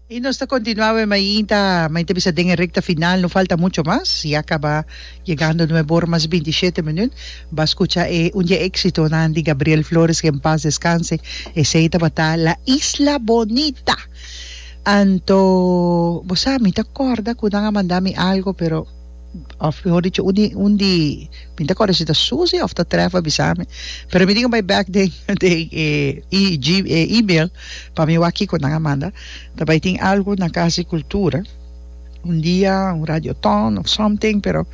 Y nos ta continua awe mainta, mainta bisa den e recta final, no falta mucho mas, ya caba yegando nuebe ora mas bintisiete minuut, ba scucha e Un dia exitonan di Gabriel Flores, que en paz descanse, esey tabata La Isla Bonita. Anto, bo sa mi ta corda cu nan a manda mi algo pero. Of mi hoor di tjoe un di mi ta kòrda si ta Susie of ta Tref a bisa mi pero mi tin ku bai bèk den den e IG e email pa mi wak kiko nan a manda ta bai tin algu na Casa di Cultura un dia un radioton of something pero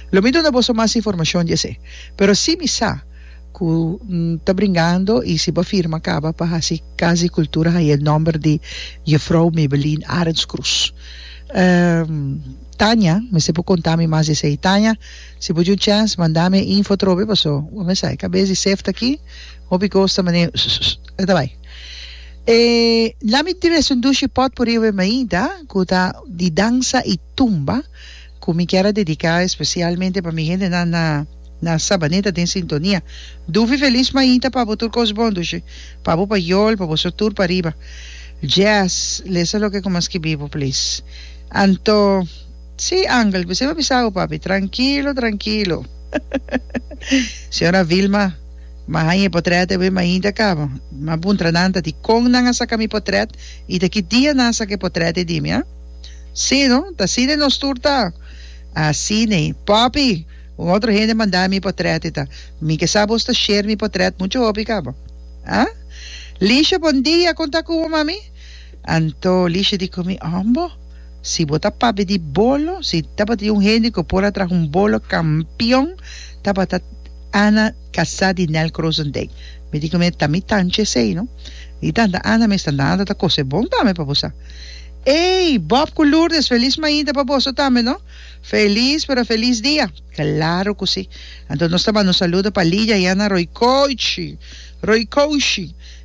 lo mi duna boso mas informashon di esei pero si mi sa ku ta bringando i si bo firma kaba pa hasi Casa di Cultura haña e nòmber di Jufrou Mebelin Arenskrus. Tanya, mester bo konta mi mas di esei. Tanya, si bo dun chèns, manda mi e info atrobe, paso bo mes sa e kabes di seft aki, hopi kos ta manera sususu. E ta bai. E la mi dress un dushi potpourri over Maida, ku ta di dansa i tumba, ku mi kier a dediká espesialmente pa mi hendenan na na Sabaneta den sintonia. Duvi felis Maida pa bo tur kos bon, dushi, pa bo payol, pa boso tur pariba. Jazz, lesa loke ku mi a skibi bo, please. Anto, Sí, Angel, bisai bo a bisa awe, papi? Trankilo, trankilo. Señora Vilma, M'a haña e potret awe, mainta kaba. M'a puntra nan ta di kon nan a saka mi potret i ta ki dia nan a saka e potret ei di mi, a? Sí, no? Ta Sidney nos tur ta? A Sidney, Papi, un otro hende manda mi e potret ei ta. Mi ke sa bos ta share mi potret muchu hopi kaba. A Lisha, Bon dia, kon ta ku bo, mami? Anto Lisha di Kumi Ombo, si bo ta papia di bolo, si tabata di un hende ku por a traha un bolo kampion, tabata Ana Kasa di Nel Kroesendijk. Mi tin ku mi e tami tanchi esei, no? Di tanta Ana mes ta nada ta kos e bon tambe pa bo sa. Ey! Bob ku Lourdes, felis mainta pa boso tambe, no? Felis, pero felis dia! Claro ku si. Anto nos ta banda un saludo pa Lidia i Ana Roycoici, Roycoshi.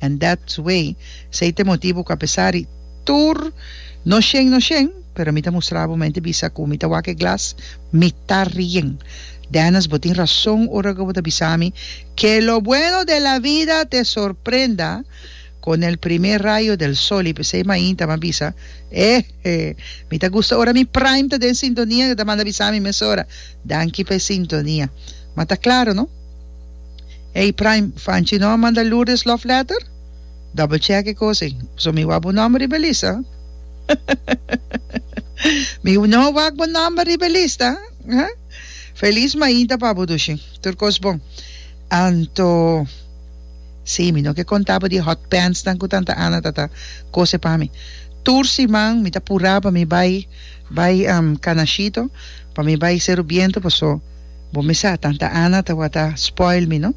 And that's way sey te motibu cu a pesar di tur no shen no shen pero mi ta mustra bo mente bisa cu mi ta wak e glas mi ta rien Dennis bo tin rason ora cu bo ta bisa mi que lo bueno de la vida te sorprenda con el primer rayo del sol y pesey mainta mi a bisa ehe mi ta gusta ora mi prime ta den sintonia y ta manda bisa mi mesora danki pa e sintonia mata claro no. Ey Prime Fanchi no a manda Lourdes love letter? Double check e cosa ey. So mi wak bo number riba e lista huh mi no wak bo number riba e lista huh Feliz mainta pa bo Dushi tur cos bon Anto si mi no ke conta bo di e hot pants nan cu tanta Ana ta ta cose pa mi tur siman mi ta pura pa mi bay bay Canashito pa mi bay Cerro Biento paso Bo mi sa, tanta Ana tabata spoil mi no,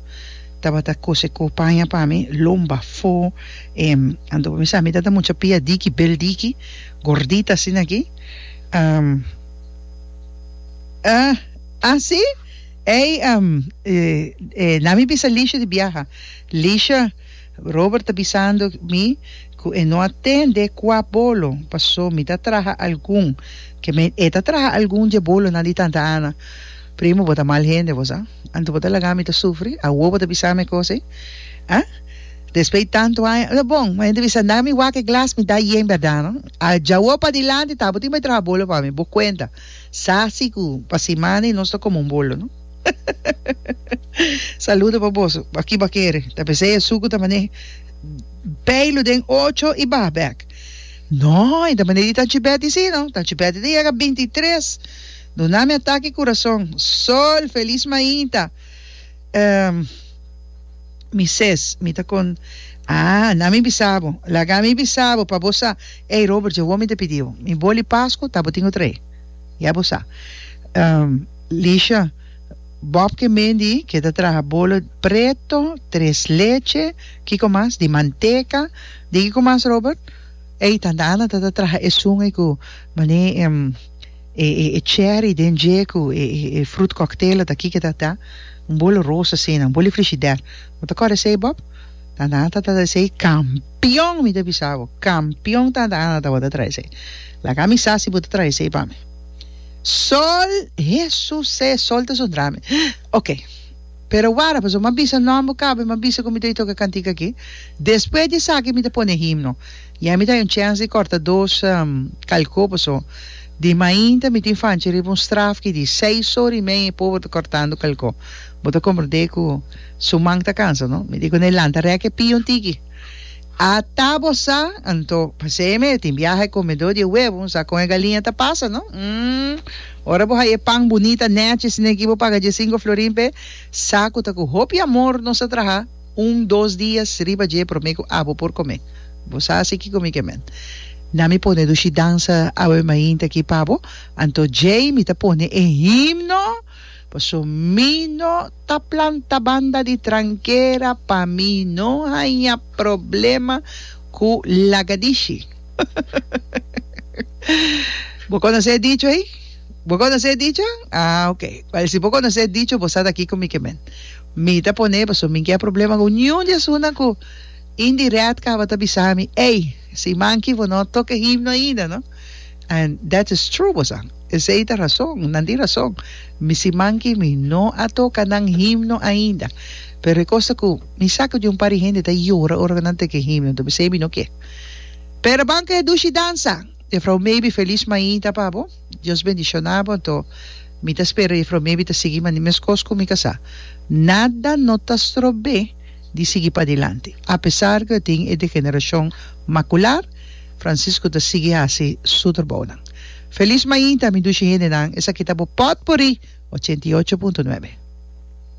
tabata kose ku paña pa mi, lom bafó, em, anto bo mi sa mi tabata mucha piadiki, beldiki, gordita asina aki, em, ah, asi? Ey, em, eh, eh, na mi bisa Lisha di biaha, Lisha. Robert ta bisando mi cu e no a tende cua bolo paso mi ta traha algun ke me e ta traha algun dje bolonan di tanta Ana. Primo bo ta mal hende bo sa. Anto bo ta laga mi ta sufri awo bo ta bisa mi e cos ei? Ha? Despey tanto aña ta bon ma hende bisa na mi wak e glas mi da yen berdad no? A djawo padilanti ta bo tin bay traha bolo pa mi bo cuenta sa si cu pa simana y nos ta como un bolo no. Saludo pa boso. Aki ba kere. Ta pese e suku ta mane peilu den ocho i bah bek. No, i ta mane di Tanchi Betty si no. Tanchi Betty ta yega 23. Duna mi ataki kurason. Sol, felis maita. Um, mi ses, mi ta kon, ah, na mi bisa bo. Laga mi bisa bo pa bo sa. Ey, Robert, dje wou mi ta pidi bo. Mi boli Pasku, ta bo tin otrei. Ya bo sa. Um, Lisha, Bob ke Mendy ke ta traha bolo preto, tres leche, kiko mas? di manteka, di kiko mas Robert? Ey tanta Ana ta ta traha esun ey ku mané e cherry den dje ku e fruit cocktail ata kiko ta ta un bolo roos asina un boli frishider bo ta kòrda esey Bob? tanta Ana ta ta traha esey kampion mi ta bisa bo kampion tanta Ana ta bo ta traha esey laga mi sa si bo ta traha esey pa mi. Sol, Hesusé, Sol ta su drami. Ok, pero wara, pasobra m'a bisa nòmber bo caba i m'a bisa cu mi ta bay toca cantica aki. Despues di esaki mi ta pone himno. Ya mi ta hay un chèns di corta dos calcó, pasobra di mainta mi tin fanchi riba un straf ki di seis ora y meia e pober ta cortando calcó. Bo ta comprendé cu su man ta cansa, no? Mi di cu n'e lanta rèk e pia un tiki. Ata bo sa, anto paseme e tin biaha comedor di e huevo, bo sa con e galiña ta pasa no? Umm, ora bo haya e pan bunita nechi sin aki bo paga diesinco florin p'e sa cu ta cu hopi amor nos a traha un dos dias riba dje prome cu abo por come. Bo sa asi kico mi ke men? Na mi pone dushi dansa Ave Mainta aki pabo, anto djei mi ta pone e himno. Paso mi no ta planta banda di trankera pa mi no haña problema ku lagadishi. Bo konosé e dicho ei? Bo konosé e dicho? Ah ok. Wèl si bo konosé e dicho bo sa ta kiko mi ke men. Mi ta pon'é paso mi ke problema ku niun di esunnan ku indirèt tabata bisa mi ey si man ki bo no toke himno ainda no. And that is true bo sa. Esei ta rason, nan tin rason. Mi siman ki mi no a toka nan himno ainda, pero e kos ta ku mi sa ku di un par di hende ta yora ora ku nan teke e himno, enton mi siy mi no ke. Pero ban ku e dushi dansa! Jefrouw Maybe felis mainta pa bo. Dios bendishona bo. Enton mi ta spera Jefrouw Maybe ta sigui mandi mes kos ku mi ka sa. Nada no ta strob'é di sigui padilanti. Apesar ku e tin e degenerashon makular, Francisco ta sigui hasi su trabounan. Feliz mainta mi dushi hendenan esaki ta bo potpourri ochenta i ocho punto nuebe.